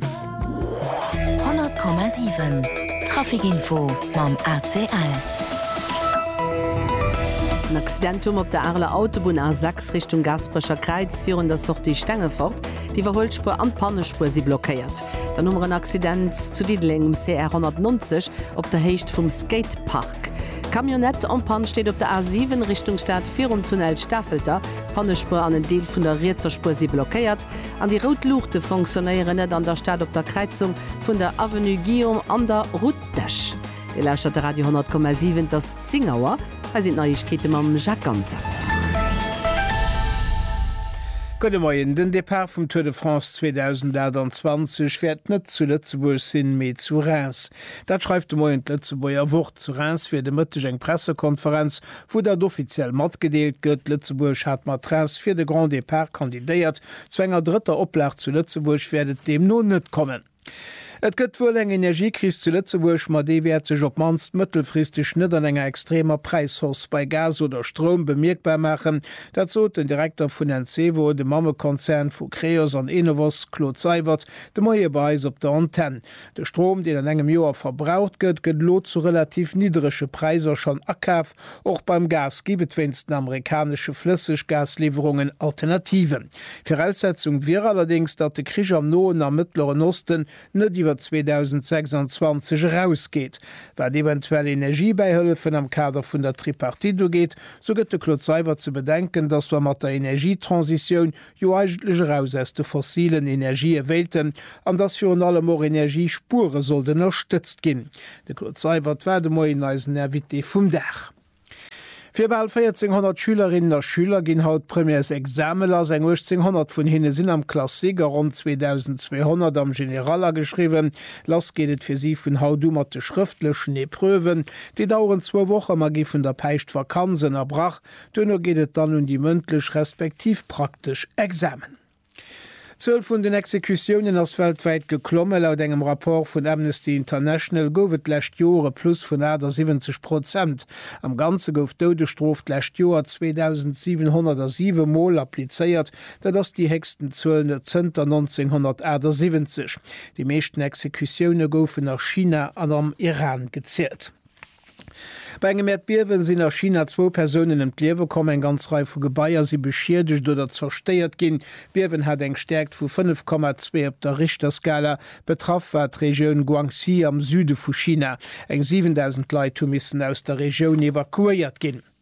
100,7 Traficinfo mam ACL. En Accident um op der Areler Autobunn A6 Richtung Gaasperecher Kräiz virun der Sortie Stengefort. D'Iwwerhuelspuer an d'Pannespuer si blockéiert. Dann hu mer en Accident zu Diddeleng um CR 190 op der Héicht vum Skatepark. D'Camionnette en panne steet op der A7 Richtung Stad virum Tunnel Stafelter. D'Pannespuer an en Deel vun der rietser Spuer si blockéiert. An déi rout Luuchte fonctionnéieren net an der Stad op der Kräizung vun der Avenue Guillaume an der Route d'Esch. Dir lauschtert de Radio 10,7, et ass 10 Auer. Hei sinn d'Neiegkeete mam Jacques Ganser. Gudde Moien, Den Depart vum Tour de France 2028 wäert net zu Lëtzebuerg sinn, mee zu Reims. Dat schreift de Moien d'Lëtzebuerger Wort. Zu Reims wier de Mëtteg eng Pressekonferenz Vu datt offiziell matgedeelt gëtt, Lëtzebuerg hat mat Rest fir de Grand Départ kandidéiert, zu enger drëtter Oplag zu Lëtzebuerg wäert et deemno net kommen. Et gëtt wuel eng Energiekris zu Lëtzebuerg, ma déi wäert sech op d'mannst mëttelfristeg net an enger extremer Präishausse bei Gas oder Stroum bemierkbar maachen. Dat sot den Direkter vun Encevo, dem Mammekonzern vu Creos an Enovos, Claude Seywert, de Moie bei eis op der Antenn. De Strom, deen an engem Joer verbraucht gëtt, gëtt elo zu relativ nidderege Präisser schonn akaf. Och beim Gas géif et wéinst den amerikanesche Flësseggasliwwerungen Alternativen. Viraussetzung wier allerdéngs, datt de Krich am Noen a Mëttleren Osten net iwwer 2026 erausgeet. Wat eventuell Energiebäihëllefen am Kader vun der Tripartite ugeet, sou gëtt de Claude Seywert ze bedenken, datt wa mat der Energietransitioun jo eigentlech eraus aus de fossilen Energië wéilten an dass virun allem och Energiespuere sollt ënnerstëtzt ginn. De Claude Seibert war de Moien eisen Invité vum Dag. Fir bal 1400 Schülerinnen a Schüler ginn haut d'Premièresexame lass. Eng 1800 vun hinne sinn am Classique a ronn 2200 am General ageschriwwen. Lass geet et fir si vun haut u mat de schrëftlechen Epreuven. Déi daueren zwou Woche ma gi vun der Päischtvakanz ënnerbrach. Duerno geet et dann un déi mëndlech respektiv praktesch Examen. D'Zuel vun den Exekutiounen ass weltwäit geklomme. Laut engem Rapport vun Amnesty International gouf et d'lescht Joer e Plus vun 78 Prozent. Am Ganze gouf d'Doudesstrof d'lescht Joer 2.707 Mol applizéiert, dat ass déi héchsten Zuel zënter 1978. Déi meeschten Exekutioune goufen a China an am Iran gezielt. Bei engem Äerdbiewen sinn a China zwou Persounen ëm d'Liewe komm, eng ganz Rei vu Gebaier si beschiedegt oder zerstéiert ginn. D'Biewen hat eng Stäerkt vu 5,2 op der Richterskala. Betraff war d'Regioun Guangxi am Süde vu China. Eng 7.000 Leit hu missen aus der Regioun evakuéiert ginn.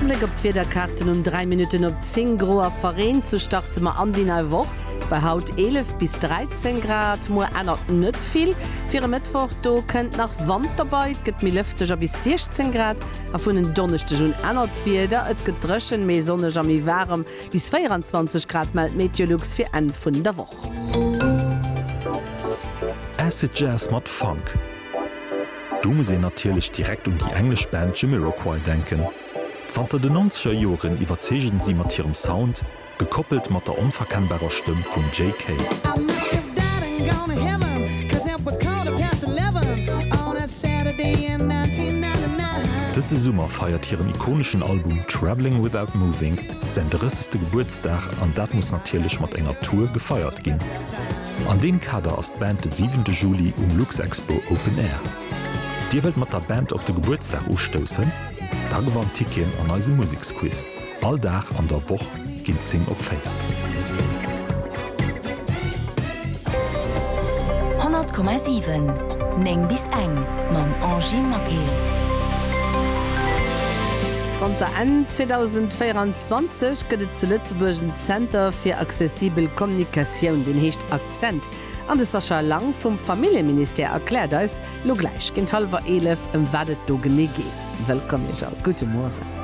Bléck op d'Wiederkaarten um 3 Minutten op 10 gro a verreent. Sou starte mer an déi nei Woch bei haut 11 bis 13 Grad. Muer ännert net vill fir e Mëttwoch, do kënnt nach Wand derbei. Et gëtt méi lëfteg a bis 16 Grad. A vun en Donneschdeg un ännert d'Wieder, et gëtt dréchen, méi sonneg a méi waarem, bis 24 Grad mellt Meteolux fir Enn vun der Woch. Acid Jazz mat Funk, do muss een natierlech direkt un déi englesch Band Jamiroquai denken. Zanter de Nonzeger Joren iwwerzeegen si mat hirem Sound, gekoppelt mat der onverkennbarer Stëmm vum Jay Kay. Dëse Summer feiert hiren ikoneschen Album Travelling Without Moving Säin 30. Gebuertsdag an dat muss natierlech mat enger Tour gefeiert ginn. An deem Kader ass d'Band de 7 de Juli um Luxexpo Open Air. Dir wëllt mat der Band op de Gebuertsdag ustoussen? Da gewannt Ticketen an eisem Museksquiz. All Dag an der Woch ginn 10 op 4. 100,7 9 bis eng mam Angy Maquet. Zanter Enn 2024 gëtt et zu Lëtzebuerg en Zenter fir accessibel Kommunikatioun, deen heescht Akzent, an de Sascha Lang vum Familljeministère erkläert eis elo gläich géint hallwer 11, ëm wat et do genee geet. Wëllkomm Iech all, gudde Mueren.